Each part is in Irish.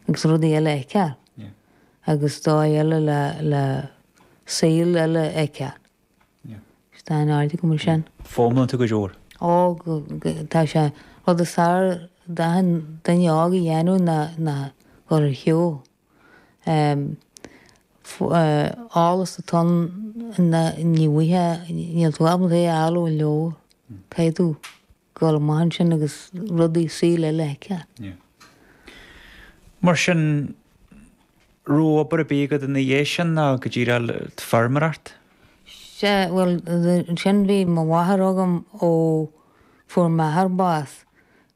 Agus rudaí eile a fheiceáil. Agus dóigh eile le saol eile a fheiceáil. Is dá n-airde go bhfuil sé an. fóm iontu go leor. Ó, tá sé. Rud is fearr d'achan duine óg a dhéanamh ná ná gabháil ar shiúl eolas atá ann ina ndíomhaoithe. Níl tú ábalta é a fháil ó an leabhar. Caithfidh tú Gabháil amach ansin agus rudaí saol eile a fheiceáil. Mar sin, raibh obair ar bith agat ina dhiaidh sin ná go dtí go raibh feirmeoireacht? Sea, bhuel, ansin bhí mo mháthair agam ó fuair m'athair bás.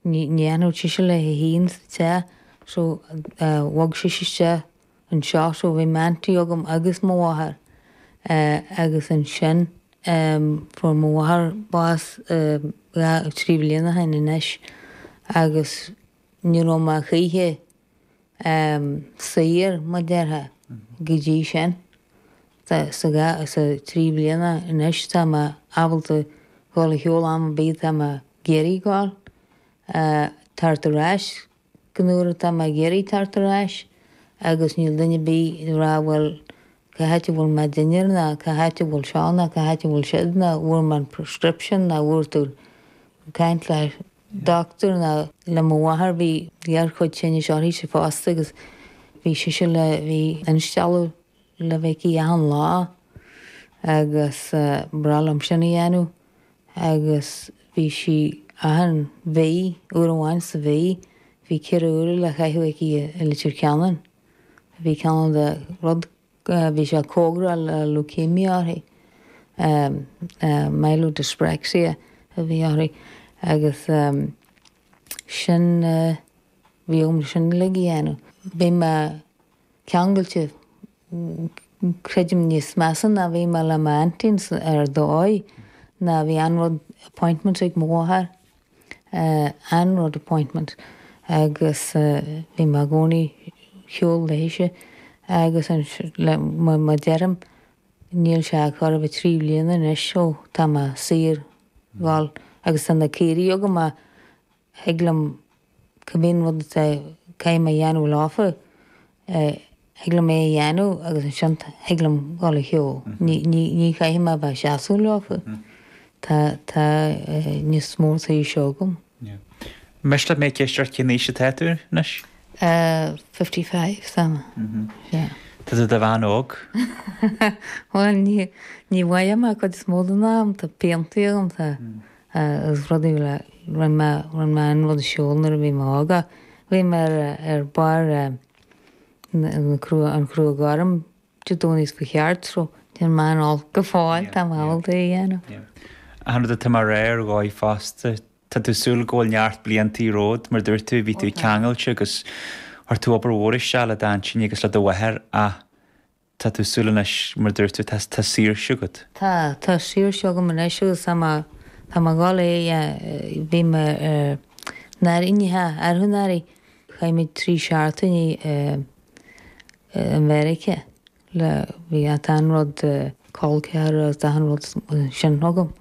Ní fhanfadh sise léi fhéin sa teach so bhog sise isteach Anseo so bhí m'aunty agam agus mo mháthair eh agus ansin em fuair mo mháthair bás em dhá, trí bhliana ó shin anois agus ní raibh mé choíche em saor mar a déarfá go dtí sin. Tá sa dhá, sa trí bhliana anois tá mé ábalta dhul ar shiúl am ar bith atá mé ag iarraidh dhul eh teacht ar ais Nuair atá mé ag iarraidh teacht ar ais agus níl duine ar bith ag rá bhuel cá háit a bhfuil mo dhinnéar ná cá háit a bhfuil seo ná cá háit a bhfuil siúd ná bhfuair mé an prescription ná bhfuair tú caint le doctor ná le mo mháthair bhí gearrchuid tinnis uirthise fosta agus bhí sise le bhí instealladh le bheith aici achan lá agus ba ghnách liom sin a dhéanamh. agus bhí sí achan mhí, uair amháin sa mhí, bhí ceithre huaire le caitheamh aici i Leitir Ceanainn. Bhí cineál de rud, bhí sé cóngarach le leukemia uirthi, myelodyspraxia a bhí uirthi agus sin, bhí orm sin uilig a dhéanamh. Bhí mé. ceangailte, creidim, níos measa ná bhí mé le m'aintín ar dhóigh, ná bhí aon rud, appointment ag mo mháthair, aon rud appointment agus bhí mé i gcónaí ar shiúl léithise agus an, mar mar deirim, níl sé ach chóir a bheith trí bhliana anois ó tá mé saor gabháil agus tá na caoirigh agam ach, thig liom, cibé rud a chaithfidh mé a dhéanamh leofa, thig liom é a dhéanamh agus ansin thig liom dul ar shiúl. Ní chaithfidh mé a bheith ag seasamh leofa. Tá, tá níos mó de shaoirse agam. Miste leat mé ag ceist ort cén aois atá tú anois? fifty five, sea, yeah. Tá tú i do bhean óg. Bhuel, ní, ní mhothaím é an chuid is mó den am, tá piantaí agam, tá, Is rud í le, rinne mé, rinne mé an rud siúl nuair a bhí mé óg, ach bhí mé ar, ar barr eh, an crua, an crua gorm de, don't ask go ceart, so níl mé an-old go fóill, Yeah, tá mé yeah, ábalta é a dhéanamh. yeah. Achan rud atá mar, ar dhóigh fosta, tá tú ag súil go bhfuil neart bliantaí romhat, mar dúirt tú, bhí Ó tú tá. ceangailte agus chuir tú obair mhór isteach le d'aintíní agus le do mháthair ach Tá tú ag súil anois, mar a dúirt tú, tá saoirse agat. Tá, tá saoirse agam anois agus tá mé, tá mé ag dul, bhí mé i Meiriceá arú anuraidh, chaith muid trí seachtaine i Meiriceá le, bhí achan rud col ceathrar agus achan rud sin agam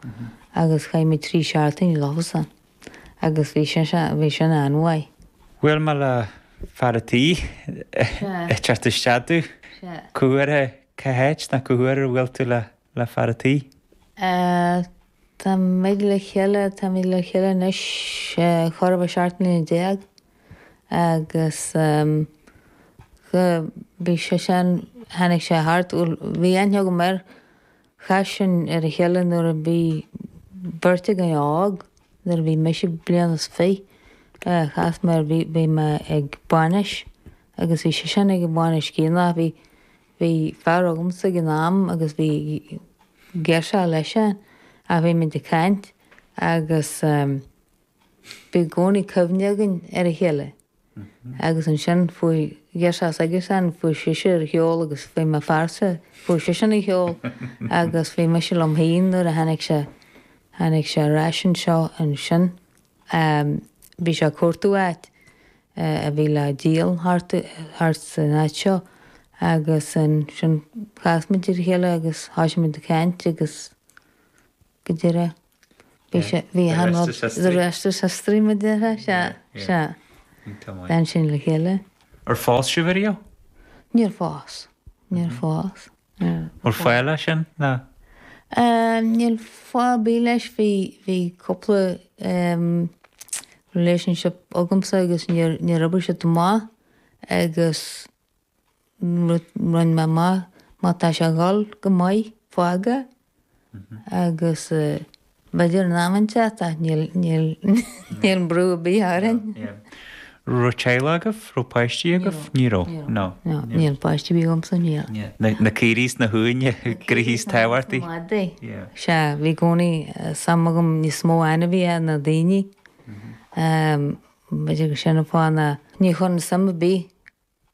agus chaith muid trí seachtaine leofasan. agus bhí sé sin, bhí sin an-mhaith. Bhuail mé le fear an tí, ag teacht isteach tú, cá huair, cá háit nó cá huair a bhuail tú le, le fear an tí? Tá muid le chéile, táimid le chéile anois chóir a bheith seacht mbliana déag agus bhí sé sin, tháinig sé thart, bhuel, bhí aithne agam air, Chas sinn ar a chéile nuair a bhí an bheirt againn óg, nuair a bhí mise bliain is fiche, chas mé ar, bhí, bhí mé ag bainis agus bhí seisean ag an bhainis chéanna, bhí, bhí fear agamsa ag an am agus bhí girseach leis-sean ach bhí muid ag caint agus bhí i gcónaí cuimhne againn ar a chéile. Agus ansin fuair girseach s'aigesean, fuair sise ar shiúl agus bhí m'fhearsa, fuair seisean ar shiúl agus bhí mise liom féin nuair a tháinig sé, tháinig sé ar ais anseo ansin. Bhí sé ag cuartú áit a bhí le díol thart, thart san áit seo agus ansin chas muid ar a chéile agus thosaigh muid ag caint agus go díreach. Bhí sé, bhí achan rud, The Rest Is History mar deir sé, sea, sea. Bhí muid ansin le chéile. Ar phós sibh ariamh? Níor phós, níor phós. Bhfuil fáth leis sin, nó? Níl fáth ar bith leis, bhí, bhí cúpla relationship agamsa agus níor, níor oibrigh siad chomh maith agus. Rinne mé amach má tá sé ag dhul go maith, fág é, agus b'fhéidir in am inteacht, tá, níl brú ar bith orainn. An raibh teaghlach agaibh, an raibh páistí agaibh? Ní raibh. Ní raibh. No. Níl páistí ar bith agamsa, níl. Yeah. Na caoirigh is na huaine, go díreach is tábhachtaí. Madaí. Yeah. Sea, bhí i gcónaí suim agam níos mó in ainmhithe ná daoine. B'fhéidir gur sin an fáth ná ní chuireann suim ar bith.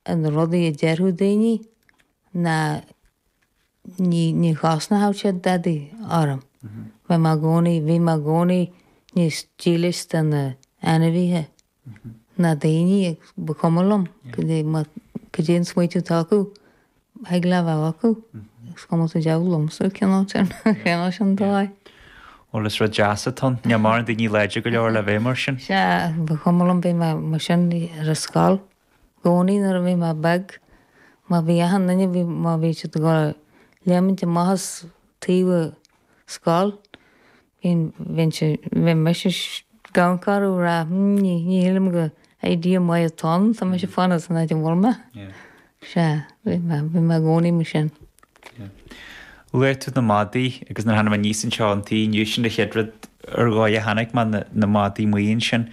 an rudaí a déarfadh daoine ná ní chosnódh siad dadaí orm. Bhí mé i gcónaí, bhí mé i gcónaí níos dílis do na ainmhithe ná daoine agus ba chuma liom cad é an smaoitiú atá acu, thig leat a bheith acu, is cuma sa diabhal liomsa cineál sin, cineál sin dóigh. Bhuel, is rud deas atá ann, níl mórán daoine láidir go leor le bheith mar sin. Sea, ba chuma liom, bhí mé mar sin ar an scoil. gcónaí nuair a bhí mé beag. Má bhí achan duine, bhí, má bhí siad ag léimint amach as teach an scoil, bhínn, bhíonn sé, bhí mise gan corrú rá, mm, ní, ní shílim gur idea maith atá ann, tá mise ag fanacht san áit a bhfuil mé. Sea, bhí mé, bhí mé i gcónaí mar sin. Luaigh tú na madaí agus nuair a tháinig mé aníos anseo chun tí inniu sin an chéad rud ar ndóigh a chonaic mé, na, na madaí amuigh ansin.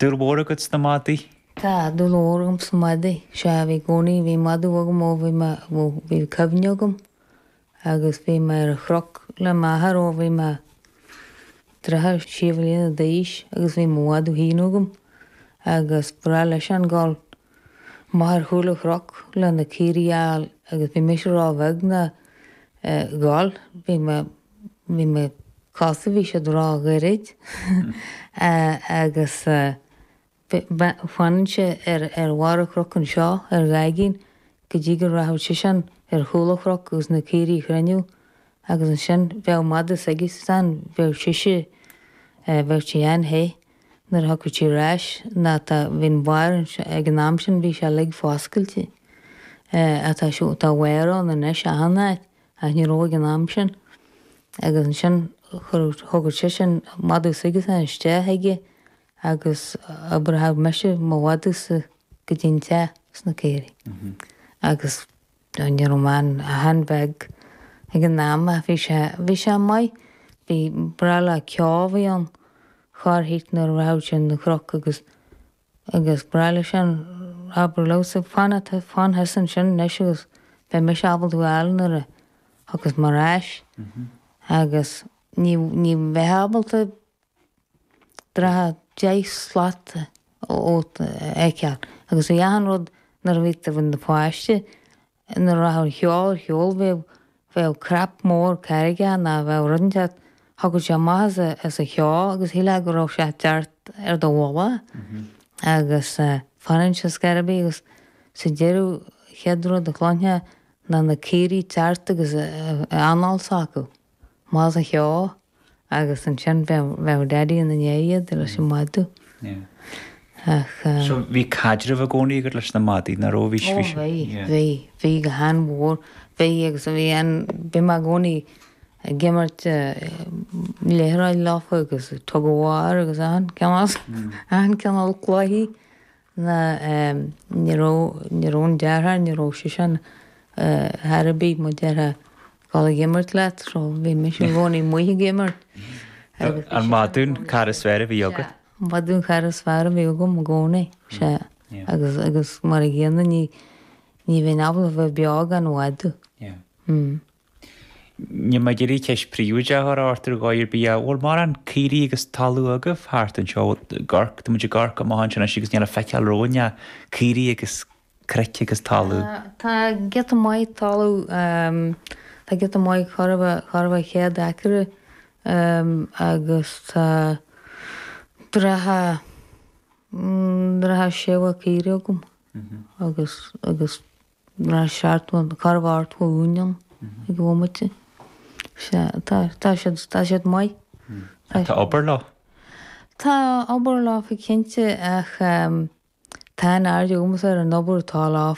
Dúil mhór agat sna madaí? Tá dúil mhór agam sna madaí. Sea, bhí i gcónaí. Bhí madadh agam ó bhí mé, bhuel, bhí cuimhne agam. Agus bhí mé ar an chnoc le m'athair ó bhí mé thart fá sé bliana d'aois agus bhí mo mhadadh féin agam. Agus ba ghnách leisean gabháil amach ar chúl an chnoc leis na caoirigh a fháil agus bhí mise ró-bheag lena ghabháil. Bhí mé, bhí mo chosa, bhí siad ró-ghairid agus. D'fhanainnse ar bharr an chnoc anseo ar Ghaigín go dtí go rachadh seisean ar chúl an chnoc agus na caoirigh a chruinniú agus ansin bheadh madadh s'aigesean bheadh sise bheadh sí an-te nuair a thiocfadh sí ar ais ná tá bhí an barr ansin ag an am sin bhí sé uilig foscailte ach tá, tá wire ann anois achan áit ach ní raibh ag an am sin agus ansin thógfadh seisean madadh s'aigesean isteach aige agus d'oibreochadh mise mo mhadadh-sa go dtí an teach leis na caoirigh agus ní raibh mé ach an-bheag ag an am ach bhí sé bhí sé maith ba ghnách le ceo a bheith ann thart nuair a rachadh sé chun an chnoc agus agus ba ghnách leisean abair liomsa fan fan thusa ansin anois agus beidh mise ábalta tú a fháil nuair a thiocfas mé ar ais agus ní ní bheitheá ábalta Thart fá deich slat romhat a fheiceáil agus bhí achan rud nuair a bhí tú i do pháiste. Nuair a rachadh an ceo ar shiúl bheadh bheadh cnap mór carraige nó bheadh rud inteacht. Thiocfadh sé amach as an cheo agus shílfeá go raibh sé ag teacht ar do mhullach agus d'fhanainnse cibé agus sa deireadh chéad rud a chluinteá ná na caoirigh ag teacht agus an anáil s'acu amach as an cheo Agus ansin bheadh Daidí ina ndiaidh iad leis an madadh. Ach. So bhí caidreamh i gcónaí agat leis na madaidh, nach raibh? Bhí siad. Ó bhí, bhí. Bhí go han-mhór. Bhí agus bhí an, bhí mé i gcónaí ag imirt liathróid leofa agus tug of war agus achan cineál, achan cineál cluichí. na Ní raibh, ní raibh an deartháir, ní raibh seisean thar a bheith, mo dheartháir ag dul ag imirt leat, so bhí mise i gcónaí amuigh ag imirt. An madadh an cara is fearr a bhí agat. An madadh an cara is fearr a bhí agam i gcónaí, sea. Agus, agus mar an gcéanna ní, ní bheinn ábalta a bheith beo gan mhadadh. Yeah. Níl mé ag iarraidh ceist phríobháideach a chur ort ar dhóigh ar bith, a. Bhfuil mórán caoirigh agus talamh agaibh thart anseo? Ag amharc, tá muid ag amharc amach anseo anois agus níl le feiceáil romhainn ach caoirigh agus cnoic agus talamh. Tá giota maith talamh, tá giota maith, corradh a, corradh is céad acra agus tá dratha, dratha sé mhaith caoirigh agam agus, agus. Bhí sé ar cheart go garbh ard go Union ag an bhomaite. Sea, tá, tá siad, tá siad maith. Ach tá obair leo. Tá obair leofa, cinnte, ach tá an-aird agamsa ar an obair atá leo.